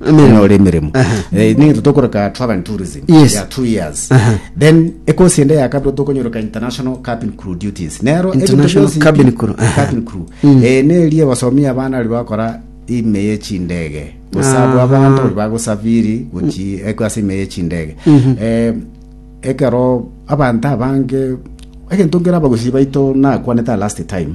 Emeremo. onyore emeremo Aha. Eh, nigento tokoreka travel and tourism Yes. ya two years Aha. then ekosi ende ya kabere tokonyoroka international cabin crew duties nero ebinto International bionsi cabin ebi- crew, aha. cabin crew Mm. Eh, nerie basomia abana ri bakora ime ye chindege gosabu Aha. abanto ori bagosafiri gochi eko ase ime ye chindege Eh, ekero abanto abange egento nkere abagusi baito nakwanete last time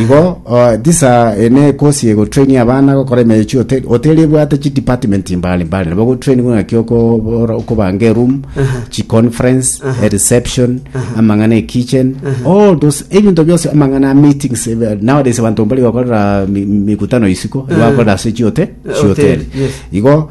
Igo tisa ene kosi egotraini abana gokora emechi hote- hoteli ebwate chidepartment mbare mbare nabo gotrainigwa ng'aki okobora okobanga eroom chiconference ereception amang'ana ekitchen all those ebinto bionsi amang'ana ameetings ebe- nowadays abanto mbari gokorera mi- mikutano isiko nigo bakorera ase chiote Hoteli, chihoteli yes. igo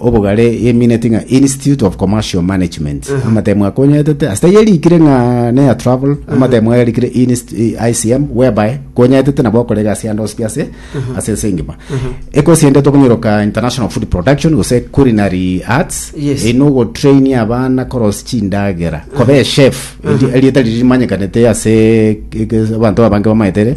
obogare emineti ng'a Institute of Commercial Management amatemo akonyaetete ase eyarikire ng'a neya travel amatemo ayarikire Inst- i- ICM whereby konyaetete nabo okora egasi yande osibi ase ase ense engima ekosi ende tokonyoroka international food production gose culinary arts Yes. eri nogotraini abana korosi chindagera kobe chef eri- erieta riri rimanyekanete ase eke- abanto abange bamaetere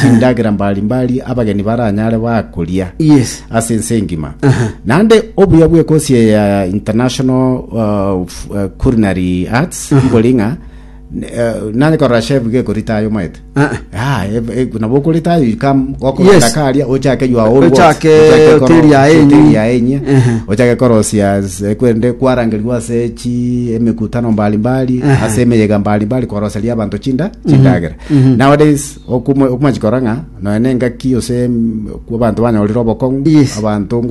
chindagera mbari mbari abageni baranyare bakoria Yes. ase ense engima naende obuya bw'ekosi eye ya international uh, f- uh, culinary arts mbori ng'a uh, nare korora chef gekorita ayo maete Ah, ah, ev- e- nabo okorita ayo ikam okorenda Yes. karia ochake your own works. Ochake Ochake koro- hoteli ya enyi. hoteli ya enye Ehe. ochake korosia ase- kwende kwarangerwa ase chi emekutano mbalimbali ase emeyega mbalimbali koroseria abanto chinda chindagera Nowadays okuma- okumachikora ng'a nonya na engaki ose mm, kwa abanto banyorire obokong'u Yes. abanto ngocha